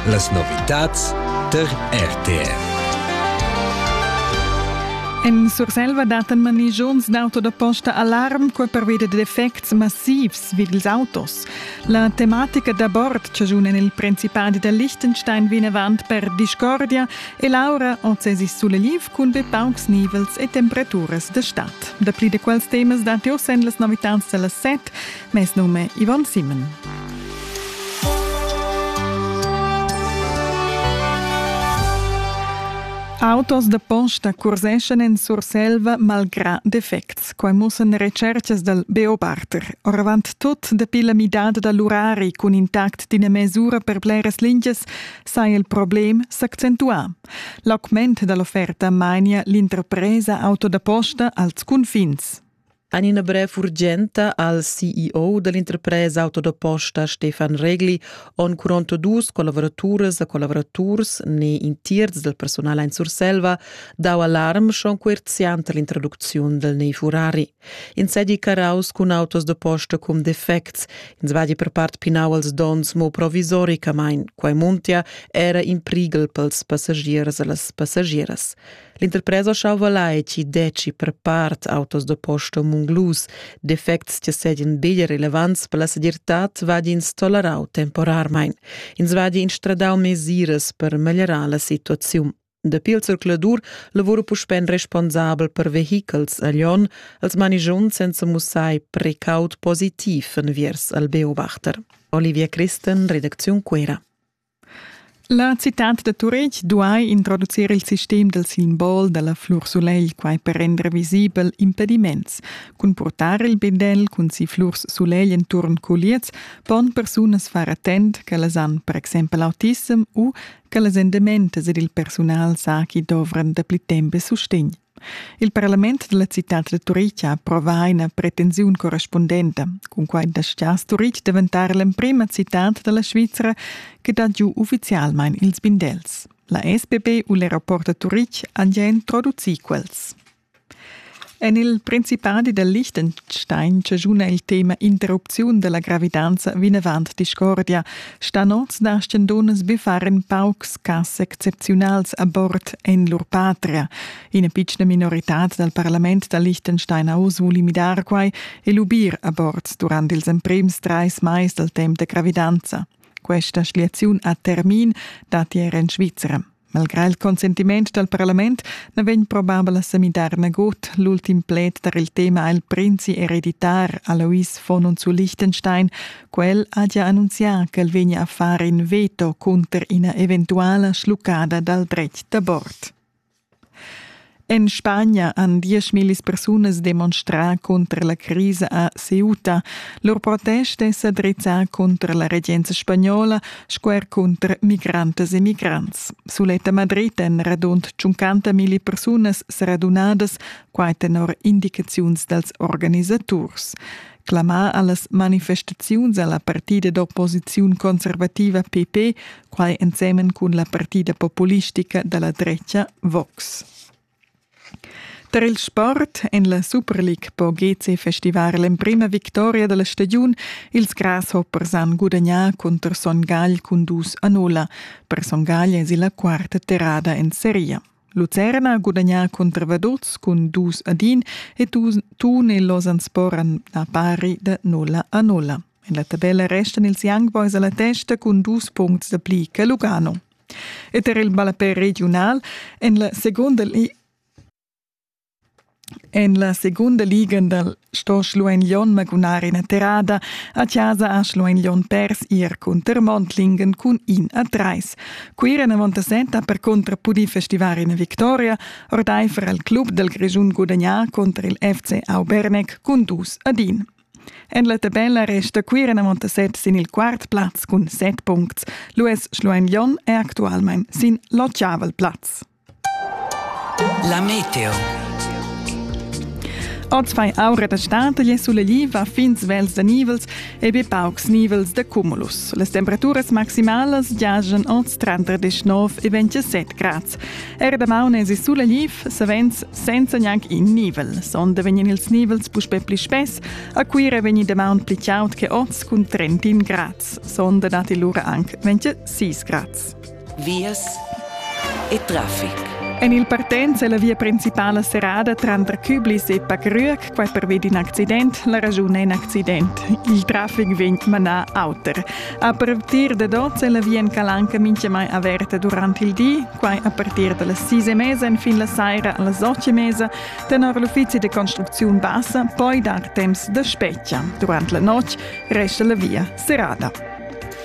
Las novitads tar RTR. En Surselva dattan manigiuns d'auto da posta alarm qua pervia da defects massivs vid ils autos. La tematica d'abort chaschuna il Principadi da Liechtenstein vinavant per discordia e l'aura oz es suleliv cun be paucs nivels e temperaturas da stad. Dapli da quels temas datti oz en las novitads da las set Mes num è Ivan Simmen. Autos da posta curseschan en Surselva malgrà defects. Quai mussan recercas dal Beo Barter. Oravant tut dapi la midada da l'urari cun intact d'ina mesura per bleras lingias saja il problem s'accentuà. L'augment da l'offerta mainia l'interpresa auto da posta als cunfins. En ina brev urgenta al CEO dell'interpresa auto da posta Stefan Regli on curonto dus collavoraturas e collaboraturs ne in tierz del personal in Surselva dau alarm schon coerziant all'introducziun del nei Furari. In sedi caraus cun autos da posta cum defects, in svadi per part pinau als dons mo provisoricamain, quai muntia era in prigel pels passagiers e las passagieras. L'interpresa Chauva Laici deci per part autos da posta munglus, defects che sedien bia relevants per la segirtad vadins tolerau temporarmein. Ins vadi instradau mesiras per meglierar la situaziun. Dapi il circuladur lavora puspén responsabel per vehichels a Lyon als manigion senza mussai precaut positiv enviers al Beobachter. Olivia Christen, Redaktion Cuera. La citad da Turitg duai introducir il sistem dal simbol da la flur-sulegl, quai per render visibel impediments. Cun purtar il bindel cun si flurs-sulegl enturn culiez pon persunas far attent ch'ellas han per exempel autissem u ch'ellas endementas ed il persunal sa ch'i dovran dapli temp e sustegn. Il parlament dalla citad da Turitg ha approvà ina pretensiun correspundenta, cun quai dastgia Turitg daventar l'emprima citad dalla Svizra che dat giu ufficialmein ils bindels. La SPP u l'aeroport da Turitg han già introducì quels. En il Principadi da Liechtenstein chaschuna il tema interrupziun dalla gravidanza vinavant discordia, Sta nots dastgan dunnas biffar in paucs cas excepziunals a bord en lur patria. Ina pitschna minoritad dal parlament da Liechtenstein ha oz voli midar quai e lubir a bord durant ils emprims trais mais dal temp da gravidanza. Questa schliaziun a termin datti er en Svizra. Malgrà il consentiment dal parlament na vegn probabel a sa midar nagut. L'ultim pled tar il tema ha il prinzi ereditar Alois von und zu Liechtenstein. Quel ha già annunzià ch'el vegnia a far in veto cunter ina eventuala schluccada dal dretg d'abort. En Spagna han dieschmillis persunas demonstrà cunter la crisa a Ceuta. Lur protest è sa drizzà cunter la regenza spagnola sco er cunter migrantas e migrants. Sulet a Madrid èn radund 50 milli persunas sa radunadas, quai tenor indicaziuns dals organisaturs. Clamà a las manifestaziuns a la partida d'opposiziun conservativa PP quai ensemen cun la partida populistica da la drecha Vox. Tar il sport en la Super League po GC festivar l'emprima victoria da la stagiun. Ils Grasshoppers han gudagnà cunter Son Gagl cun dus a nulla. Per Son Gagl es la quarta terrada en seria. Lucerna ha gudagnà cunter Vaduz cun dus ad in e Thun e Lausanne sporan a pari da nulla a nulla. En la tabella restan ils Young Boys alla testa cun dus punts da pli che Lugano. E per il ballapè regiunal en la seconda En la segunda liga dal sto Schluein Lyon magunar ina terrada a chasa a Schluein Lyon pers ir cunter Montlingen cun in a trais. Cuira Navontasenta per contra pudì festivar ina victoria ordaifer al club dal Grischun gudagnà contro il FC Auberneck cun dus ad in. En la tabella resta Cuira Montaset sin il quart plaz cun set puncts. L'US Schluein Lyon è actualmain sin l'otgavel plaz. La meteo. Oz fai aura da stad e suleliva fin svels da nivels e be paucs nivels da cumulus. Las temperaturas maximalas giajan oz tra 39 e 27 grads. Era damaun esi suleliv, savens senza gnanc in nivel. Sonda vegnan ils nivels puspè pli spess. A Cuira vegni damaun pli chaud che oz cun 31 grads. Sonda datti lura anc 26 grads. vias e traffic. En il partenz è la via principala serrada tranter Küblis e Pagrüeg, quai pervi d'in accident. La raschun è in accident. Il traffic vegn manà auter. A partir da 12 è la via en Calanca mintgamai averta durant il di, quai a partir da las 6 e mesa fin la saira a las 8 e mesa, tenor l'uffizi de construziun bassa, poi dar temps da spetga. Durant la notg resta la via serrada.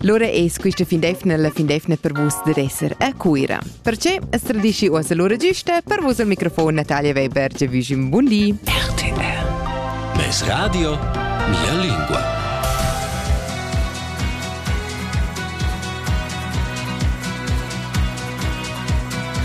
Lura es quista findefna la findefna per vus da esser a Cuira. Perche as tradischi uossa lura giusta per vus al microfon Natalia Weber, che vi un bun di. RTL Mes radio, mia lingua.